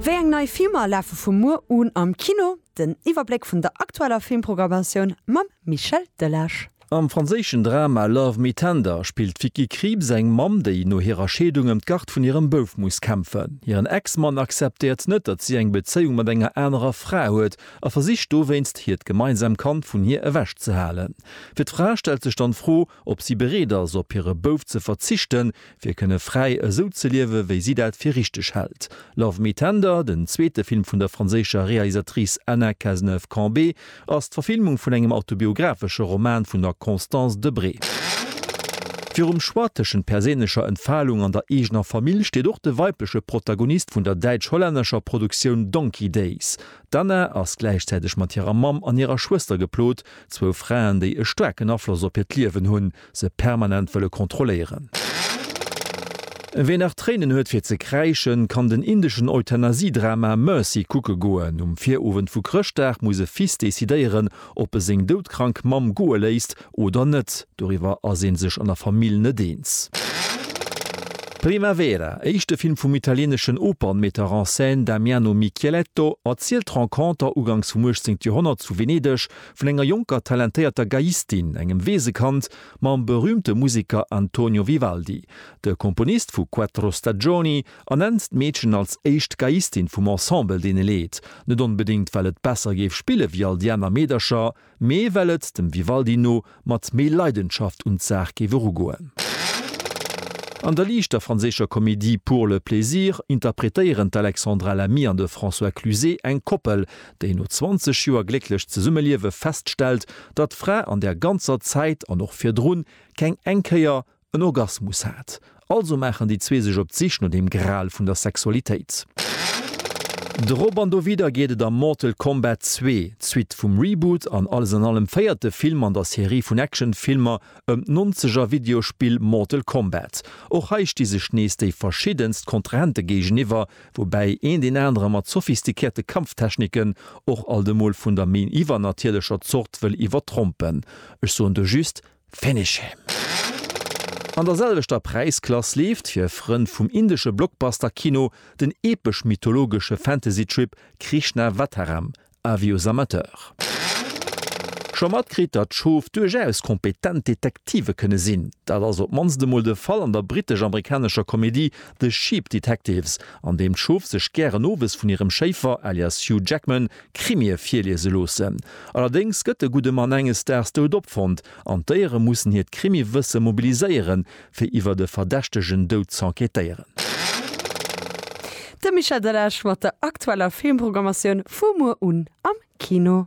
Wéi eng nei Filmer lafe vu muer un am Kino? Den Iwwerbléck vun der aktueller Filmpprogrammatioun mam Michel Delage. Am franséischen Drama Love Me Tender spillt d'Vicky Krieps eng Mamm, déi no hirer Scheedung ëm d'Gard vun hirem Bouf muss kämpfen. Hiren Ex-Mann akzeptéiert net, datt si eng Bezéiung mat enger anerer Fra huet a versicht dowéinst, hiert gemeinsam Kand vun hir ewechzehalen. Fir d'Fra stellt sech dann d'Fro, ob si bereet ass, op hire Bouf ze verzichten, fir kënne fräi esou ze liewen, wéi si dat fir richteg hält. Love Me Tender, den zweete Film vun der franséischer Realisatrice Anna Cazeneuve-Cambé, ass d'Verfilmung vun engem autobiographesche Roman vun der Constance Debré. Virum Choix tëschent perséinlecher Entfalung an der eegener Famill steet och de weibleche Protagonist vun der däitsch-hollännescher Produktioun Donkey Days. D'Anna ass gläichzäiteg mat hirer Mamm an hirer Schwëster geplot, Zwou Fraen, déi e staarken Afloss op hiert Liewen hunn, se permanent wëlle kontrolléieren. Ween nach Tréinen huet fir ze kräischen, kann den indeschen Euthanasie-Drama Mercy kucke goen. Um Virowend vu Chrëschtdag muss e Fils decidéieren, ob e seng doudkrank Mamm goe léisst oder net. Doriwwer ass ee sech an der Famill net eens. Primavera, éischte Film vum italieneschen Opernmetteur en scène Damiano Micheletto, erzielt d'Renconter ugangs vum 18. Joerhonnert zu Venedeg vun enger jonker talentéierter Geiistin, engem Weesekand, mam berüümte Museker Antonio Vivaldi, de Komponist vu Quattro Stagioni, ernennt d'Meedchen als éischt Geiistin vum Ensemble, deen e leet, net onbedéngt well et besser géif spille wéi all déi aner Meedercher, mee well et, dem Vivaldi no, mat méi Leidenschaft un d'Saach géif erugoen. An der liichter franséischer Komedie Pour le plaisir interpretéieren d'Alexandra Lamy an de François Cluzet eng Koppel, déi no 20 Joer glécklech Zesummeliewe feststellt, datt d'Fra an där ganzer Zäit an och virdrun keng eng Kéier En Orgasmus hat. Also maachen déi zwee sech op d'Sich no dem Gral vun der Sexualitéit. Drop an dowidder geet et a Mortal Kombat zwee, d'Suite vum Reboot an alles an allem véierte Film an der Serie vun Actionfilmer ëm d'Nonzeger-Videospill Mortal Kombat. Och hei sti sech nees déi verschiddenst Kontrahente géigeniwwer, woubäi een deen anere mat sophistikierte Kampftechniken och alt emol vun der méi iwwernatierlecher Zort wëll iwwertrompen. Ech soen do just, Finish him! An der selwechter Präisklass leeft fir Frënn vum indesche Blockbuster-Kino den epesch-mythologesche Fantasy-Trip Krishnavataram, Avis aux amateurs. Scho matkritt, datt Schof duerchaus kompetent Detektive kënne sinn? Dat ass op d'mannst emol de Fall an der brittesch-amerikanescher Komedie The Sheep Detectives, an deem d'Schof sech gären owes vun hirem Schéifer alias Hugh Jackman Krimie virliese loossen. Allerdéngs gëtt de gudde Mann enges Daags dout opfonnt an d'Déiere mussen hiert Krimiwësse mobiliséieren, fir iwwert e verdächtegen Dout z'enquêtéieren. De Michel Delage mat der aktueller Filmprogrammatioun vu muer un am Kino.